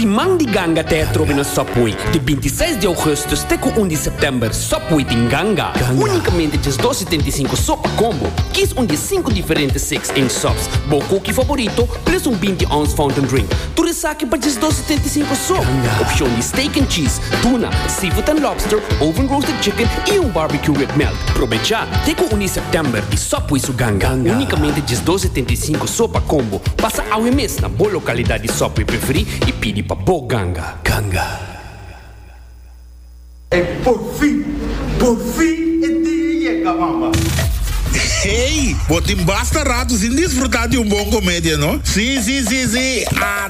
Siman di Ganga te a trobe na Subway, di binti seis di ougustus te ku un di sèptèmber. Subway tin ganga, únikamente djes dos setenta i sinku so pa combo. Kis un di e sinku diferente six inch subs, bo koki faborito, pres un binti ons fountain drink. Tur esaki pa djes dos setenta i sinku so. Opshon di steak and cheese, Tuna, seafood and lobster, oven roasted chicken y un barbecue with melt. Probecha! Te cu uni September y sop pui su ganga. Unicamente dies dos setenta y cinco so pa combo. Pasa awe mes na bo localidad di sop pui preferi y pidi pa bo ganga. Ganga. Ey por fin, por fin e dia yega mama. Hey! Bo tin basta rato sin disfruta di un bon comedia, no? Si, si, si, si! Ah!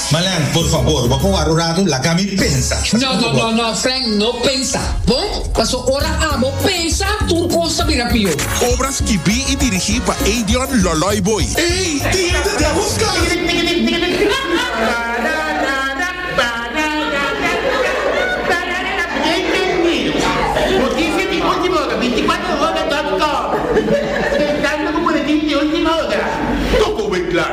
Malen, por fabor, bo por ward un ratu, laga mi pensa. No, no, no, no, Frank, no pensa, bon? Paso ora abo pensa, tur cos ta bira pior. Obra skibí i dirigí pa Eidion Lòlòi Booi. Ey, dia ta den busca.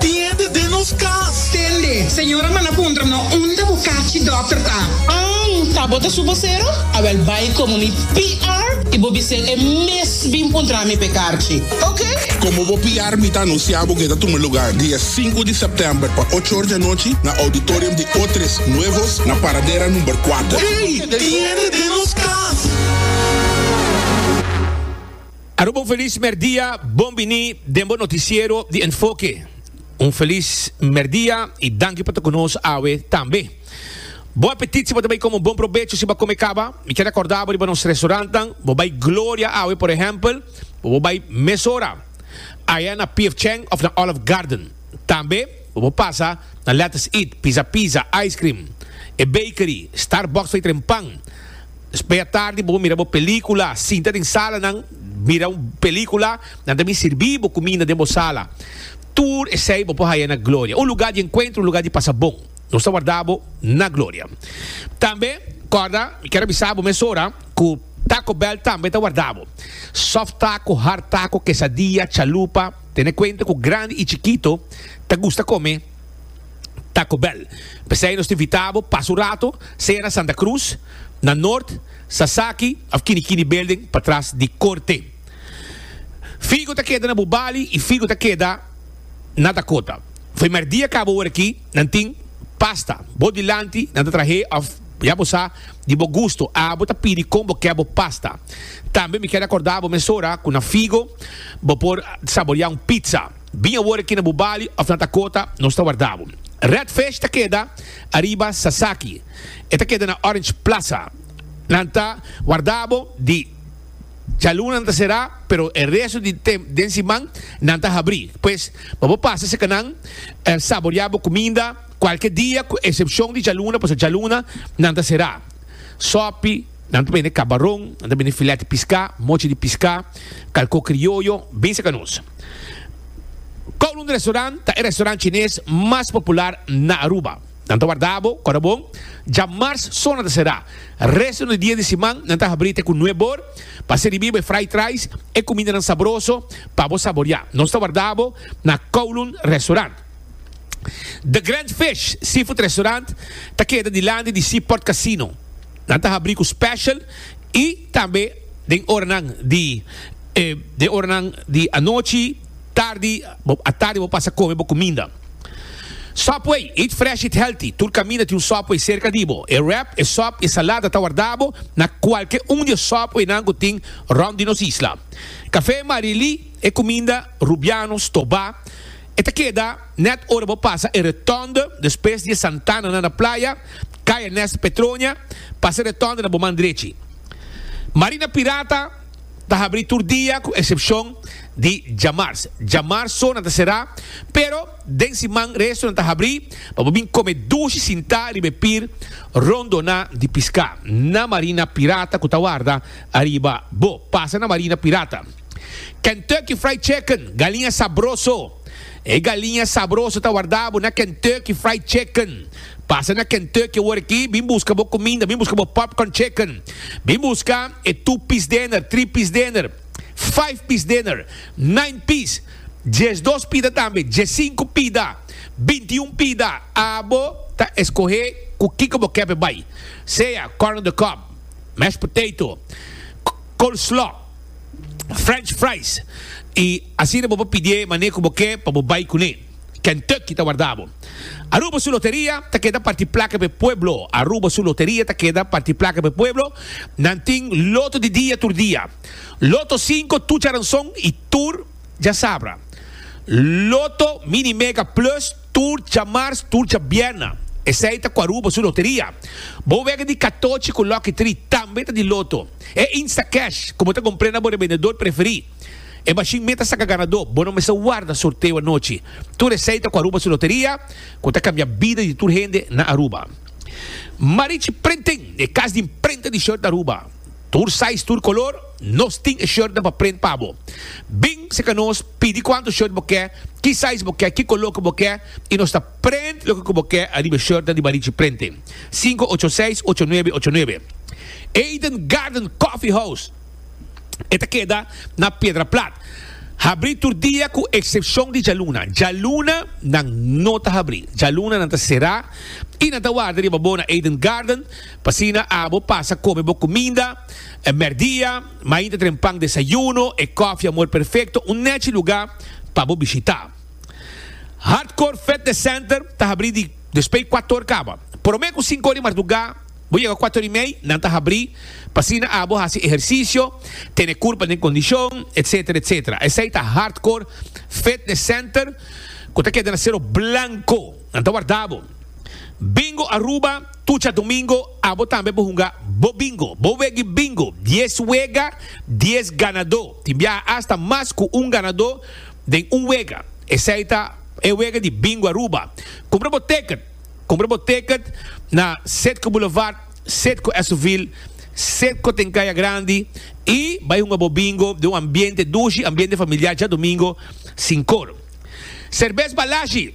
Tin hende den nos cas. Tende, señora manda puntra no unda bo cachi doctor ta. An ta bo ta su vocero? Awel bay como mi PR y bo bisé e mes bin puntra mi p'e carchi. Ok. Como bo PR mi ta anuncia bo cu e ta tuma lugar dia sinku di september pa ocho or di anochi na auditorium di Otres Nuevos na Paradera number kuater. Ey! Tin hende den nos cas. Aruba un felis merdia, bon bini den bo noticiero di Enfoke. Un felis merdia y danki pa ta cu nos awe tambe. Bo apetit si bo ta bay come un bon probecho si bo a come caba? Mi kier recorda bo riba nos restaurantnan, bo bay Gloria awe por ehempel, bo bo bay mesora aya na PF Chang of na Olive Garden. Tambe bo bo pasa na Let's Eat, Pizza Pizza, Ice Cream, E Bakery, Starbucks fey tren pan, Mea tardi bo mira bo película. Sinta den salanan mira un película. Nan ta bin sirbi bo cuminda den bo sala. Tur esey bo por haya na Gloria, un lugar di encuentro, un lugar di pasa bon. Nos ta warda bo na Gloria. Tambe corda, mi kier a bisa bo mesora cu Taco Bell tambe ta warda bo. Soft taco, hard taco, quesadilla, chalupa, tene cuenta cu grandi y chikito ta gusta come. Taco Bell. P'esei nos ta invitá bo pasa un rato sea na Santa Cruz, na Noord, Sasaki of Kinikini Building patras di Corte. Figo ta keda na bo bali i figo ta keda na Dakota. F'e merdia kaba ora aki nan tin pasta. Bo dilanti nan ta trah'é of ya bo sa di bo gusto abo ta pidi kon bo ke bo pasta. Tambe mi ker akordá bo mesora ku na figo bo por saboriá un pizza. Bin awor aki na bu bali of na Dakota, nos ta warda bo. Redfish ta keda ariba Sasaki. E ta keda na Orange Plaza. Nan ta warda bo di djaluna nan ta será, pero e resto di den siman nan ta habrí. Pues pa bo pasa cerca nan, saboriá bo cuminda cualke dia cu excepcion di djaluna, pasobra djaluna nan ta será. Sopi. Nan ta bende kabaron, nan ta bende filèt piská, mochi di piská, kalkó krioyo, bin serka nos. Kowloon Restaurant ta e restaurant chines mas popular na Aruba. Nan ta warda bo kòrda bon. Djamars so nan ta será. Resto di dia di siman nan ta habrí te ku nueb bor pa siribí bo e fried rice, e kumindanan sabroso pa bo saboriá. Nos ta warda bo na Kowloon Restaurant. The Grand Fish Seafood Restaurant ta keda dilanti di Seaport Casino. Nan ta habrí ku special i tambe den oranan di den oranan di anochi, tardi, atardi bo pasa kome bo kuminda. Subway, eat fresh, eat healthy, tur kaminda tin un Subway serka di bo. E wrap, e sòp i e salada ta warda bo na kualke un di e Subwaynan ku tin rònt di nos isla. Kafé Marilí, e kuminda Rubianos, Tobá. E ta keda nèt ora bo pasa e Rotonde, despues di e Santana nan na playa, kai Ernesto Petronia, pasa e Rotonde na bo man drechi. Marina Pirata ta habrí tur dia ku eksepshon di djamars. Djamars so nan ta será, pero den siman resto nan ta habrí pa bo bin kome dushi sintá riba e pir rondoná di piská na Marina Pirata ku ta warda ariba bo. Pasa na Marina Pirata. Kentucky Fried Chicken, galiña sabroso. E galiña sabroso ta wardá bo na Kentucky Fried Chicken. Pasa na Kentucky awor aki, bin buska bo kuminda, bin buska bo popcorn chicken, bin buska e two piece dinner, three piece dinner, five piece dinner, nine piece, dies dos pida tambe, dies sinku pida, binti un pida. Abo ta eskohé ku kiko bo kèp e bai, sea corn on the cob, mashed potato, coleslaw. French fries y asina bo por pidié manera cu bo ke pa bo bay cuné. Kentucky ta warda bo. Aruba su loteria ta keda parti placa p'e pueblo. Aruba su loteria ta keda parti placa p'e pueblo. Nan tin loto di dia tur dia. Loto cinco tucharanson y tur djasabra. Loto mini mega plus. Tur djamars, tur djabièrna. Esei ta ku Aruba su loteria. Bo wega di katochi ku Lucky Tri tambe ta di loto. E Instacash, ku bo ta kompr'é na bo rebendedor preferí. E mashin meta saka ganadó. Bo no mester warda sorteo anochi. Tur esei ta ku Aruba su loteria, ku ta kambia bida di tur hende na Aruba. Marichi Printing, e kas di imprenta di short na Aruba. Tur size, tur color, nos tin e shirtnan pa print pa bo. Bin seka nos, pidi cuanto shirt bo ke, ki size bo ke, ki color cu bo ke y nos ta print loke cu bo ke ariba e shirtnan di Marichi Printing, sinku ocho seis ocho nuebe ocho nuebe. Eden Garden Coffee House e ta keda na Piedra Plat. Habri tur dia cu excepcion di djaluna. Djaluna nan no ta habri. Djaluna nan ta cera y nan ta warda riba bo na Eden Garden. P'asina abo pasa kome bo kuminda e mèrdia, mainta tren pan desayuno, e kòfi amor perfekto, un nèchi lugá pa bo bishitá. Hardcore Fitness Center ta habrí di despei kuator kaba. Promé ku sinku or di mardugá, bo yega kuator i mei, nan ta habrí, p'asina abo hasi ehersisio, tene kurpa den kondishon, etsetera, etsetera. Esei ta Hardcore Fitness Center, ku ta keda na Sero Blanko. Nan ta warda bo. Bingo Aruba. Tucha domingo abo tambe por hunga bo bingo. Bo wegi bingo, dies wega, dies ganadó. Tin biaha asta mas cu un ganadó den un wega. Esey ta e wega di Bingo Aruba. Cumpra bo ticket! Cumpra bo ticket na Citgo Boulevard, Citgo Esoville, Citgo den Caya Grandi y bay hunga bo bingo den un ambiente dushi, ambiente familiar, djadomingo sin cor. Serbes Balashi!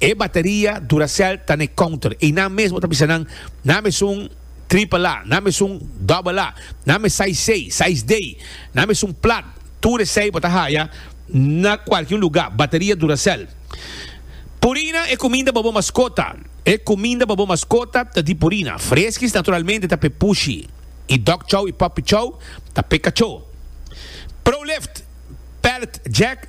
E bateria Duracell ta na e counter y nan mesmo ta bisa nan, Nan esun triple A, nan esun double A, nan e size C, size D, nan esun plat, tur esey bo ta haya na cualkier un lugar, bateria Duracell. Purina e cuminda pa bo mascota E cuminda pa bo mascota ta di Purina. Fresquis naturalmente ta p'e pushi y dog chow y puppy chow ta p'e cachó. Pro Lift, Pallet Jack,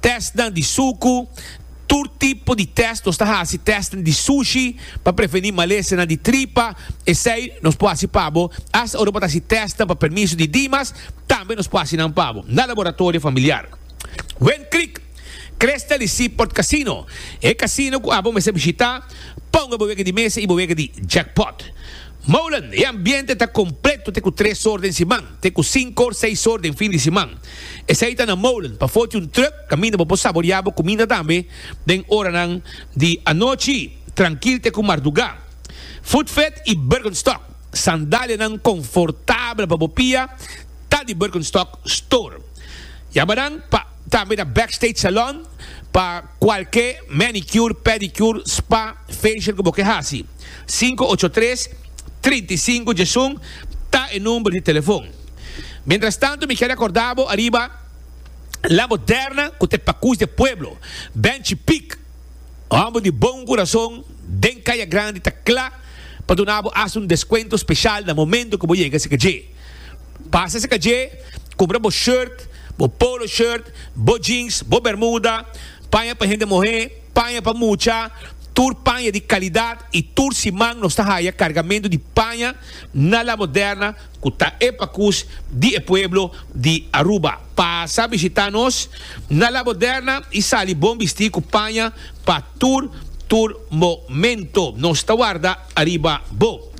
Testnan di suku, Tur tipo di test, nos ta hasi testnan di sushi pa prevení malesanan di tripa, esei nos por hasi pa bo, hasta ora bo ta hasi testnan pa permiso di dimas, tambe nos por hasi nan pa bo na laboratorio familiar. Wind Creek, Cresta di Seaport Casino, e casino cu abo mester bishita, ponga bo wega di mesa y bo wega di jackpot. Molen, e ambiente ta completo te cu tres sor den siman, te ku sinkor, seisor den fin di siman. Esei ta na molen pafó di un trùk kaminda bo por saboriá bo kuminda tambe den oranan di anochi trankil te ku mardugá. Footfed i Birkenstock, sandalianan konfortabel pa bo pia, ta di Birkenstock Store. Yamanan pa tambe na Backstage Salon pa. Cualke manicure, pedicure, spa, facial cu bo ke haci. Sinku ocho tres, trinta i sinku djesun ta e number di telefon. Mientras tanto mi ke recorda bo ariba La Moderna cu ta e pacus di e pueblo. Benchi Pic, homber di bon curason den Caya Grandi ta cla pa duna bo hasta un descuento special na momento cu bo yega cerca dje. Pasa cerca dje, cumpra bo shirt, bo polo shirt, bo jeans, bo bermuda, paña pa hende muhe, paña pa mucha, tur paña di calidad y tur siman nos ta haya cargamento di paña na La Moderna cu ta e pacus di e pueblo di Aruba. Pasa bishita nos na La Moderna y sali bon bisti cu paña pa tur tur momento. Nos ta warda. Ariba bo.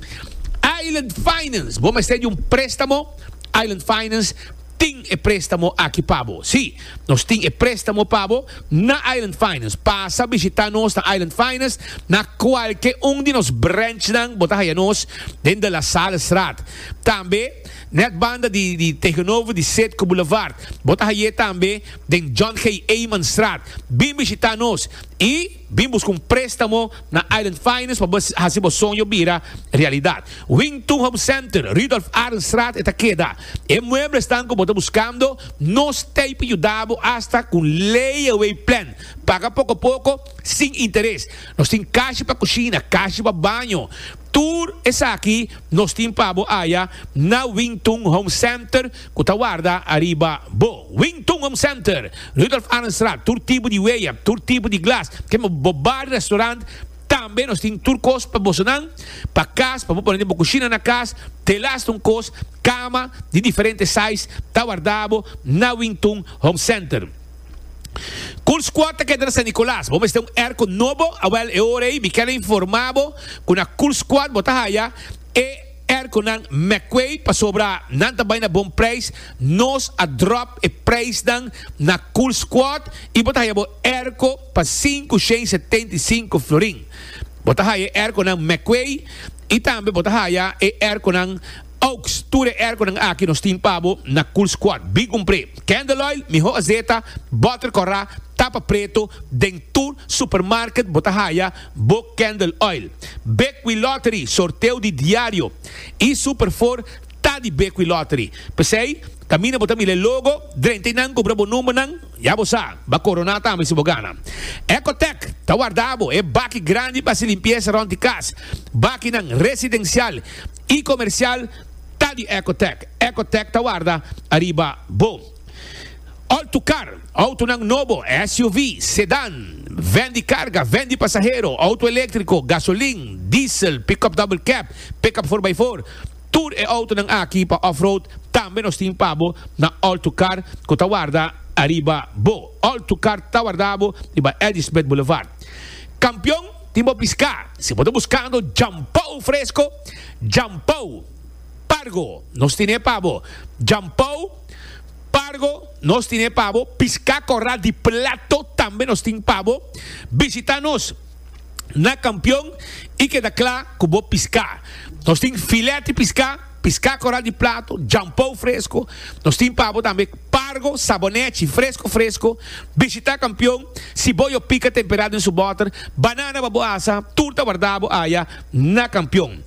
Island Finance, bo mester di un préstamo? Island Finance tin e préstamo aki pa bo. Sí, nos tin e préstamo pa bo na Island Finance. Pasa bishitá nos na Island Finance. Na kualke un di nos branchnan bo ta haya nos, den De La Salestraat. Tambe nèt banda di di tegenover di Sedco Boulevard. Bo ta hay'é tambe den John G. Eymanstraat. Bin bishitá nos i. Bin busca un prestamo na Island Finance pa bo haci bo soño bira realidad. Wington Home Center, Rudolph Arendstraat e ta keda. E mueblesnan cu bo ta buscando, nos t'ey pa yuda bo hasta cu un layaway plan. Paga poco poco, sin interes. Nos tin cashi pa cushina, cashi pa baño. Tur esaki nos tin pa bo aya na Wington Home Center. ku ta warda ariba bo. Wing Tung Home Center, Rudolf Arenstraat, tur tipo di weya, tur tipo di glas, kende pa bo bar, restaurant, tambe nos tin tur kos pa bosonan, pa kas, pa bo pone den bo kushina na kas, telas ta un kos, kama di diferente size ta warda bo na Wing Tung Home Center. Cool Squad ta keda na San Nicolas, bo mester un airco nobo, awel e ora ei mi kel informa bo ku na Cool Squad bo ta haya e. Er cu nan meckway pasobra nan ta bay na bon prijs, nos a drop e prijsnan na Cool Squad y bo ta haya bo airco pa sinku shen setenta y sinku florin. Bo ta haya e airconan meckway y tambe bo ta haya e airconan Oaks. Tur e airconan aki nos tin pa bo na Cool Squad. Bin cumpre! Candle Oil, Miho Azeta, Butter Cora, Tapa Preto, den tur supermarket bo ta haya. Book Candle Oil, Bekwin Lottery, sorteo di diario y Super Four ta di Bekwin Lottery. P'esey, caminda bo ta mira e logo, drenta y nan cubra bo numbernan, ya bo sa, ba corona tambe si bo gana. Ecotec ta warda bo e baki grandi p'haci limpieza rond di cas. Bakinan residencial y comercial ta di Ecotec. Ecotec ta warda ariba bo. Altu kar, outonan nobo, SUV, sedan, vèn di karga, vèn di pasahero, outo eléktriko, gasolin, diesel, pick-up double cab, pick-up for by four, tur e outonan aki pa off-road tambe nos tin pa bo na Altu Kar ku ta warda ariba bo. Altu Kar ta warda bo riba Ladysmith Boulevard. Kampion, tin bo piská! Si bo ta buskando djampou fresko, djampou, pargo, nos tin'é pa bo. Djampou. Pargo nos tin e pa bo, pisca corral di plato tambe nos tin pa bo. Visita nos na Campeon y keda cla cu bo pisca. Nos tin filet di pisca, pisca corral di plato, jampou fresco. Nos tin pa bo tambe pargo, sabonechi, fresco fresco. Visita Campeon, si bo yo pica temperado den su boter, banana pa bo asa, tur ta warda bo aya na Campeon.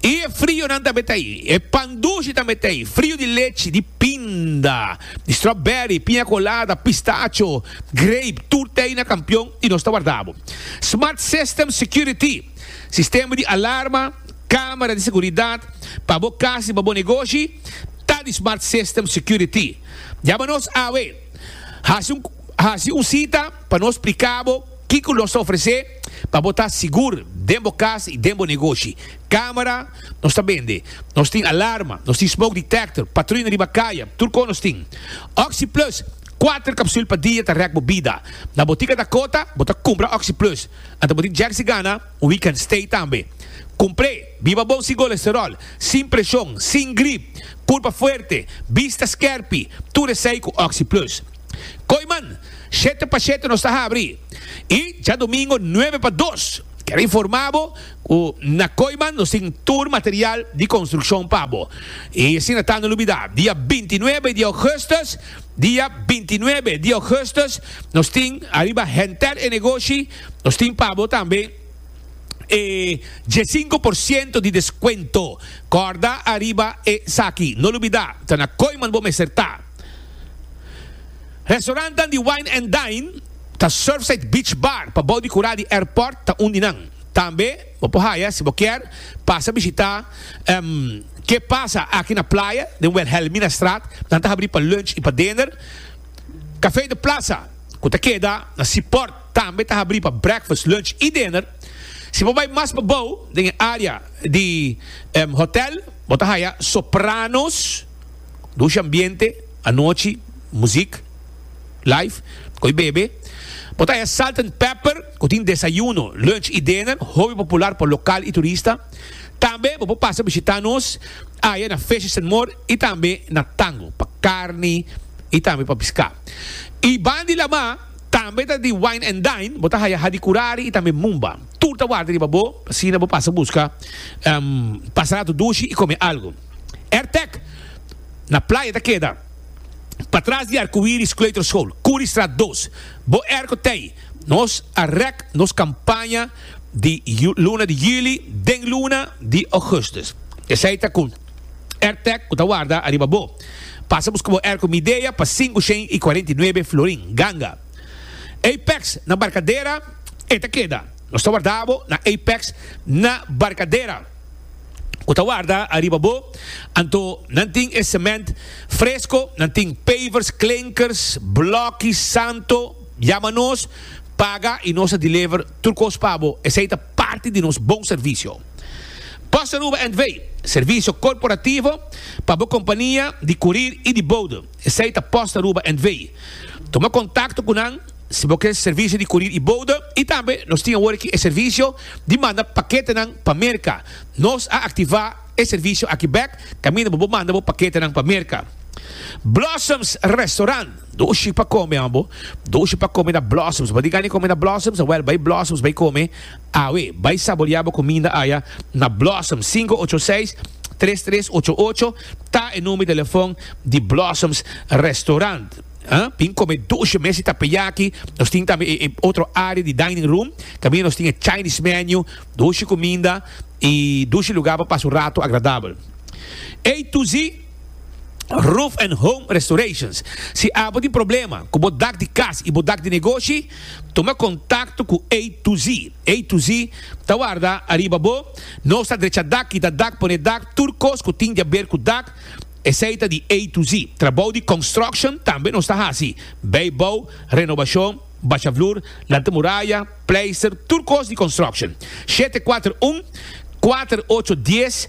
I e frionan tambe ta ei. E pan dushi tambe ta ei, frio di lechi, di pinda, di strawberry, piña colada, pistacho, grape, tur ta ei na Kampion i nos ta warda bo. Smart System Security, sistema di alarma, camera di seguridad, pa bo cas i pa bo negoshi ta di Smart System Security. Jama nos awe. Hasi un cita pa nos splica bo. Kiko nos ta ofresé pa bo ta sigur den bo kas i den bo negoshi? Kámara nos ta bende. Nos tin alarma, nos tin smoke detector, patruina riba kaya, tur kos nos tin. Oxi Plus, kuater kapsul pa dia ta rèk bo bida. Na botika Dakota bo ta kumpra Oxi Plus. Anto bo tin Jersey Gana, un week kan stay tambe. Kumpr'é, biba bon sin kolesteròl, sin preshon, sin grip, kurpa fuerte, bista skèrpi, tur esei ku Oxi Plus. Koiman, shete pa shete nos ta habri i djadumingo nuebe pa dos. Quiero informa bo cu na Koiman nos tin tur material di construccion pa bo. I asina ta no lubida, dia bintinuebe di augustus, dia bintinuebe di augustus nos tin ariba Hentel e Negoshi, nos tin pa bo tambe e diesinco por ciento di descuento. Corda ariba esaki, no lubida, ta na Koiman bo mester ta. Restaurantnan di Wine and Dine ta Surfside Beach Bar pabou di Cura di Airport ta un di nan. Tambe bo por haya si bo kier pasa bishita Ke Pasa Aki na Playa den Wilhelminastraat. Nan ta habri pa lunch y pa dinner. Café de Plaza cu ta keda na Seaport tambe ta habri pa breakfast, lunch y dinner. Si bo bay mas pabou den e area di hotel bo ta haya Sopranos. Dusha ambiente anochi muzik live cu e bebe. Bo ta haya Salt and Pepper cu tin desayuno, lunch y dinner hopi popular pa local y turista. Tambe bo por pasa bishita nos aya na Fishes and More y tambe na Tango pa carni y tambe pa pisca. Y ban di lama tambe ta di wine and dine, bo ta haya Hadi Curari y tambe Mumba. Tur ta warda riba bo asina bo pasa busca, pasa rato dushi y come algo. Ertec na playa ta keda patras di Arcoiris Kleuterschool, Curiestraat dos. Bo erco t'ey. Nos a rek nos campaña di luna di juli den luna di augustus. Esey ta cu Ertec cu ta warda ariba bo. Pasa busca bo erco Midea pa sinku shen y cuarenta y nuebe florin, ganga. Apex na Barcadera, e ta keda. Nos ta warda bo na Apex na Barcadera. ku ta warda ariba bo, anto nan tin e sement fresko, nan tin pavers, klinkers, blòki, santo, yama nos, paga i nos a deliver tur kos pa bo, esei ta parti di nos bon servisio. Bossa Aruba N.V. Servisio korporativo pa bo kompania di kurir i di boude. Esei ta post Aruba and Vei. Tuma kontakto ku nan si bo ke servisio di kurir i bouda i tambe nos tin awor aki e servisio di manda paketenan pa Merka. Nos a aktivá e servisio aki bèk kaminda bo por manda bo paketenan pa Merka. Blossoms Restaurant. Dushi pa kome, ambo. Dushi pa kome na Blossoms. Bo a diga nan di kome na Blossoms? Awèl, bai Blossoms bai kome. Awe, bai saborea bo kuminda aya na Blossoms, sinku ocho seis, tres tres ocho ocho ta e number di telefòn di Blossoms Restaurant. Tin kome doshe mes di tapeyaki, nos tin tambe e otro área di dining room, tambe nos tin e Chinese menu, doshe kuminda i doshe lugá pa pasa un ratu agradabel. Ey tu si Roof and Home Restorations, si abo tin problema ku bo dak di kas i bo dak di negoshi, Tuma kontakto ku A to Z. A to Z ta warda ariba bo. Nos ta drecha dak, kita dak, pone dak, tur kos ku tin di a ber ku dak, esei ta di A to Z. Trabou di konstruksjon tambe nos ta hasi, beibou, renobashon, basha flur, lanta muraya, pleister, tur kos di konstruksjon. Shete kuater un, kuater ocho dies.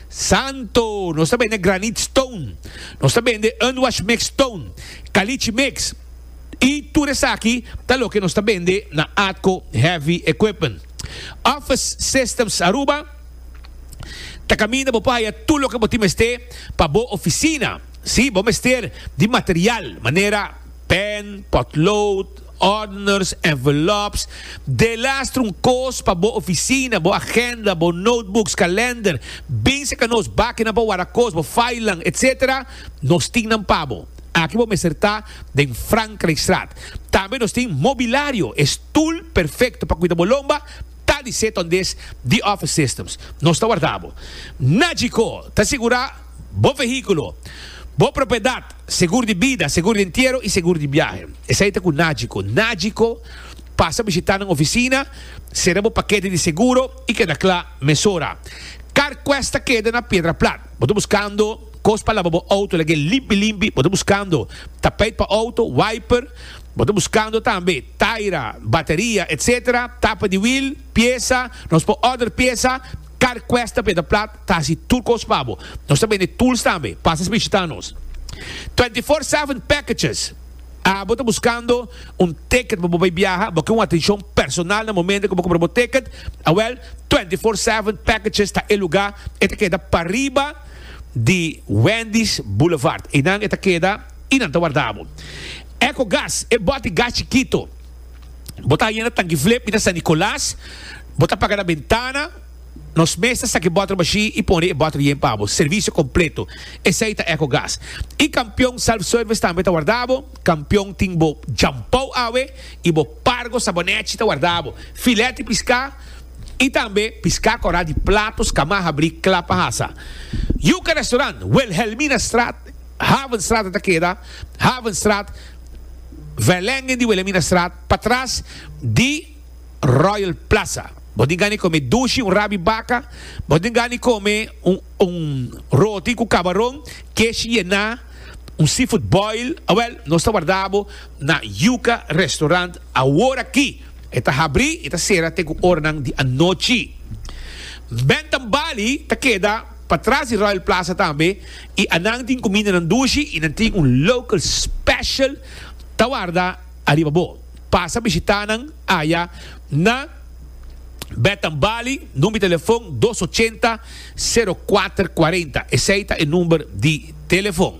Santo, nos ta bende granite stone, nos ta bende unwashed mixed stone, caliche mix, y tur esaki ta loke nos ta bende na Atco Heavy Equipment. Office Systems Aruba ta caminda bo por haya tur loke bo tin mester pa bo oficina. Si, bo mester di material manera pen, potlood, Ordners, envelops, delastra un kos pa bo ofisina, bo agenda, bo notebooks, kalender, bin seka nos bakina pa wara kos, bo filenan, etc. Nos tin nan pa bo. Aki bo mester ta den Frankrijkstraat. Tambe nos tin mobilario, e stoel perfecto pa kuida bo lomba ta di Seton Dis di Office Systems. Nos ta warda bo. Najiko ta sigura. Bo vehíkulo, bo propiedat, segur di bida, segur di entiero i segur di biahe. Esei ta ku Nagico. Nagico, Pasa bishitá nan ofisina, sera bo pakete di seguro i keda kla mesora. Carquest ta keda na Piedra Plat. Bo ta buskando kos pa laba bo outo lagu'é limpi limpi? Bo ta buskando tapeit pa outo, wiper? Bo ta buskando tambe taira, bateria, etc? Tapa di wil, piesa? Nos por order piesa? Carquest ta Piedra Plat. Casi tur cos pa bo. Nos ta bende tools tambe. Pasa es bishita nos. Twenty four seven packages. Abo ta buscando un ticket pa bo bay biaha, bo ken un atencion personal na momento cu bo compra bo ticket, a wel, Twenty four seven packages ta e lugar. E ta keda pariba di Wendy's Boulevard. Eynan e ta keda y nan ta warda bo. Ecogas, e boti gas chikito. Bo ta ayena Tanki Flip y ta San Nicolas. Bo ta paga na bentana. Nos mes ta saki bòter mashí i pone e bòter yen pa bo. Servisio kompleto. Esei ta Ecogas. E Kampion Self Service tambe ta warda bo. Kampion tin bo djampou awe i bo pargo sabonèchi ta warda bo. Filèt di piská i tambe piská kòrá di platos kamá habrí kla pa hasa. Yuka Restaurant, Wilhelminastraat, Havenstraat a ta keda, Havenstraat, Vijlingen di Wilhelminastraat, patras di. Royal Plaza. Bo tin gana come dushi, un rabi baca. Bo tin gana come un un roti cu cabaron, kesh yena, un seafood boil. Awel, nos ta warda bo na Yuca Restaurant aworaki. E ta habri y ta cera te cu oranan di anochi. Bentham Bali ta keda patras di Royal Plaza tambe y anan tin cumindanan dushi y nan tin un local special ta warda. Ariba bo. Pasa bishitá nan aya na Betan Bali, number di telefon dos ochenta, sero kuater kuarenta. Esei ta e number di telefon.